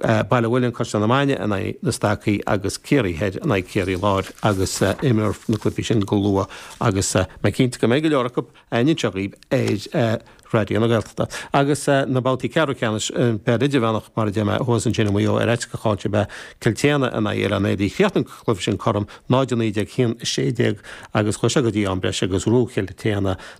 Baile an Mhuilinn Caisleán na Mainge in aghaidh Na Stacaigh agus Ciarraí Thoir in aghaidh Ciarraí Láir agus imreofar na cluichí sin go luath agus mé cinnte go mbeidh go leor acu againn anseo daoibh ar Raidió na Gaeltachta. Agus na babhtaí ceathrú ceannais sa bpeil idirmheánach mar a deir mé thuas ansin i Maigh Eo ar eite go cáinte bhí Cill tSéadhna in aghaidh Oileán Éadaí. Chríochnaigh an cluiche sin cothrom, 0-19 1-16 agus chuaigh sé go dtí am breise agus ghnóthaigh Cill tSéadhna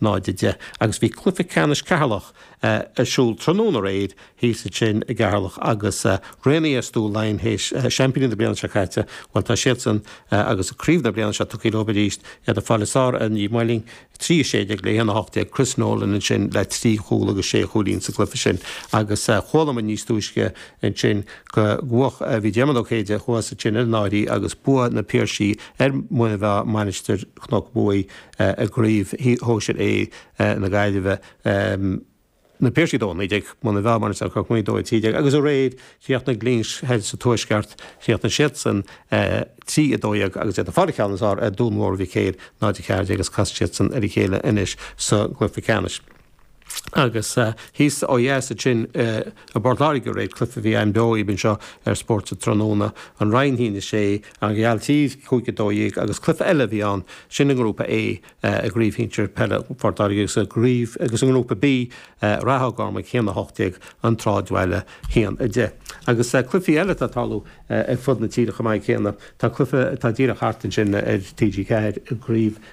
1910 agus bhí cluiche ceannais Cheatharlach ar siúl tráthnóna aréir thíos ansin i gCeatharlach agus Raonaithe Stua Laighean seaimpíní na bliana seo caite, bhuel tá siadsan agus craobh na bliana seo tugtha leo arís, iad ag fáil an ceann is fearr ar Naomh Moling, 3-16 le 1-18, Chris Nolan ansin le trí chúl agus sé chúilín sa gcluiche sin agus chuala muid níos túisce ansin go bhfuair bhí Diarmuid Ó Céide thuas ansin ar an áirí agus bua ag na Piarsaigh ar Mhuine Mheá, Mainistir Chnoc Muaidhe. i gCraobh Shóisir A na Gaillimhe, Na Piarsaigh Dó 19, Muine Mheá, Mainistir Chnoc Muaidhe Dó 13, agus aréir chríochnaigh Glinsce thoir sa tuaisceart, chríochnaigh siadsan 3, 12, agus iad ag fáil an ceann is fearr ar Dhún Mór Mhic Éil 0, 14, agus casfaidh siadsan ar a chéile anois sa gCluiche Ceannais. Agus thíos ó dheas ansin i bPort Láirge aréir cluife a bhí againn beo daoibh anseo ar Spórt an Tráthnóna, An Rinn hAon a Sé, An Ghailltír, Cúig a Dó Dhéag agus cluife eile a bhí ann, sin i ngrúpa A i gCraobh Shinsear Peile Phort Láirge agus i gCraobh agus i ngrúpa B, Ráth Ó gCormaic hAon a hOcht Déag, An tSráidbhaile hAon a Deich. Agus cluifí eile atá ag tarlú ar fud na tíre chomh maith céanna. Tá cluife atá díreach thart ansin ar TG4 i gCraobh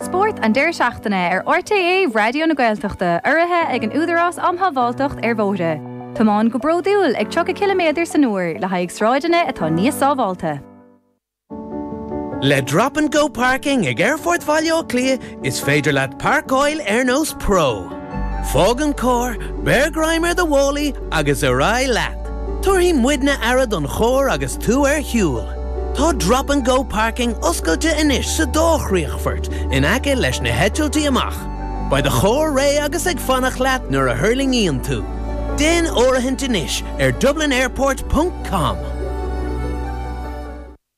Spórt an deireadh seachtaine ar RTÉ Raidió na Gaeltachta, urraithe ag an Údarás um Shábháilteacht ar Bhóithre. Tiomáin go bródúil ag 30 ciliméadar san uair le haghaidh sráideanna atá níos sábháilte. Le Drop and Go Parking ag Aerfort Bhaile Átha Cliath Is féidir leat pairceáil ar nós pro. Fág an carr, beir greim ar do mhálaí agus ar aghaidh leat. Tabharfaidh muidne aire don charr agus tú ar shiúl. Tá Drop and Go Parking oscailte anois sa dá chríochfort in aice leis na heitiltí amach. Beidh do charr réidh agus ag fanacht leat nuair a thuirlingíonn tú. Déan áirithint anois ar dublinairport.com.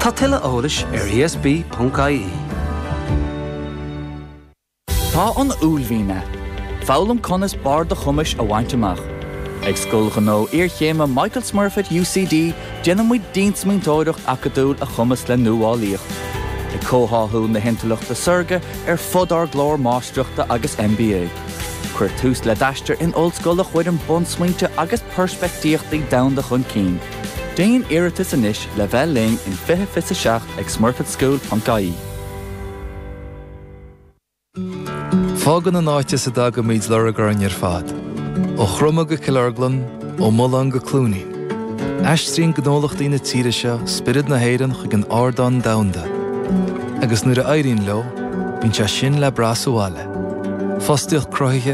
Tá tuilleadh eolais ar ESB.ie. Tá an uaillmhian agat. Foghlaim conas barr do chumais a bhaint amach. Ag Scoil Ghnó Iarchéime Michael Smurfit UCD déanaimid diansmaointeoireacht acadúil a chumasc le nuálaíocht, ag comhtháthú na hintleachta saorga ar fud ár gclár Máistreachta agus MBA. Cuir tús le d'aistear in ollscoil a chuireann bunsmaointe agus peirspictíochtaí domhanda chun cinn. Déan iarratas anois le bheith linn in 20 fiche 7 ag smurfitschool.ie. Fágann an áit as a dtagaimid lorg orainn ar fad. Ó Chroma go Cill Orglan, ó Mhuileann go Cluainín. Aistríonn gnólachtaí na tíre seo spiorad na hÉireann chuig an ardán domhanda. Agus nuair a éiríonn leo, bíonn sé sin le brath sa bhaile. Fostaíocht cruthaithe,